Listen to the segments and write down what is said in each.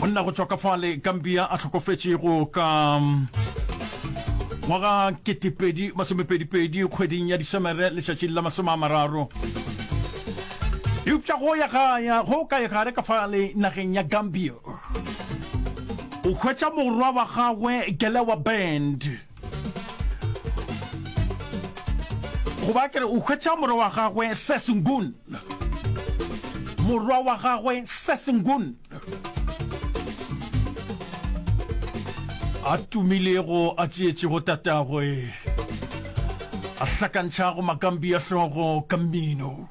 monna go tšwa ka fale gambia a tlhokofetšego ka mm, ngwaga 2022 kgweding ya disemere letšatšing la masome a mararo eupša go ya gaya go ka egare ka fale nageng ya gambia o hwetša morwa wa gagwe gelewa band go ba kere o hwetša morwa wa gagwe sesengun morwa wa gagwe sesengun a tumilego a tšeetšego tatagwe a hlakantšhago makambi a hlogo ka mmino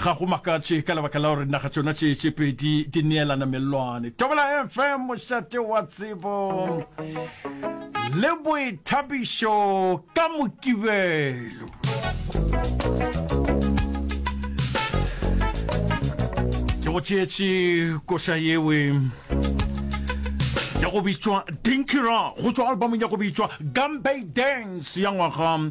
ga go makatše ka lebaka la gore naga tšona tše tše pedi di neelana mellwane tobela fm mošate wa tsebo le boithabišo ka mokibelo ke go tšeetše koša yewe ya go bitšwa dinky ra go tšwa albumong ya go bitšwa gambay dance ya ngwaga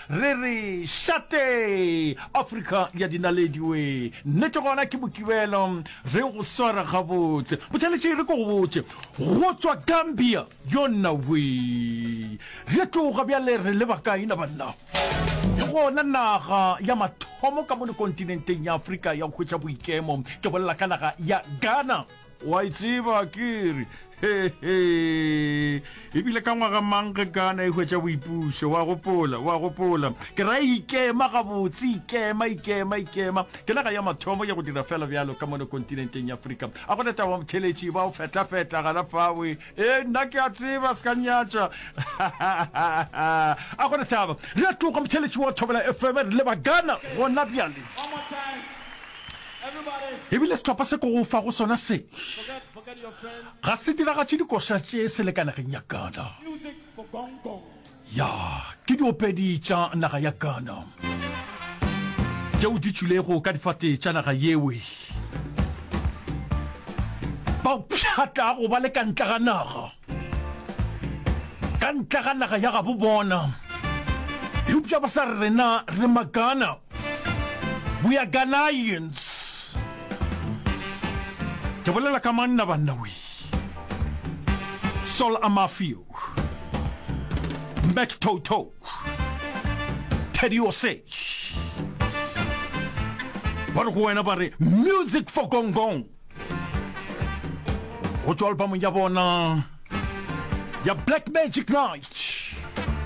Re re šate! Afrika ya dinaledi we! Nnete gona ke Mokibelo, re yo go swara gabotse. Motšheletše re ko go botše, go tšwa Gambia, yona we! Re a tloga bjale re leba kae na banna? Ke gona naga ya mathomo ka mono kontinenteng ya Afrika ya go hwetša boikemo, ke bolela ka naga ya Ghana. wa itseba e kere hehe ebile ka ngwaga mang ge kana e hwetša boipušo wa gopola wa gopola ke ra ikema gabotse ikema ikema ikema ke naga ya mathomo ya go dira fela bjalo ka mono kontinenteng ya afrika a gona taba motheletši ba o fetlafetla gana fawe e nna ke a tseba se ka nyatša a gona taba re a tloga motheletši wa thobela fm re le bagana gona bjale ebile sehlopha se ko go fa go sona se ga se diragatše dikoša tše selekanageng ya ghana ya ke diopedi tša naga ya ghana tšeo di tšwilego ka difate tša naga yewe ba pšhatla go ba le ka ntle ga naga ka ntle ga naga ya gabo bona eupša ba sa rena re magana We are Ghanaians. Ke bolela ka manna banna we. Sol Amafio. Mac Toto. Teddy Osei. Ba re go wena ba re music for gongong. Go tšwa albamong ya bona ya Black Magic Night.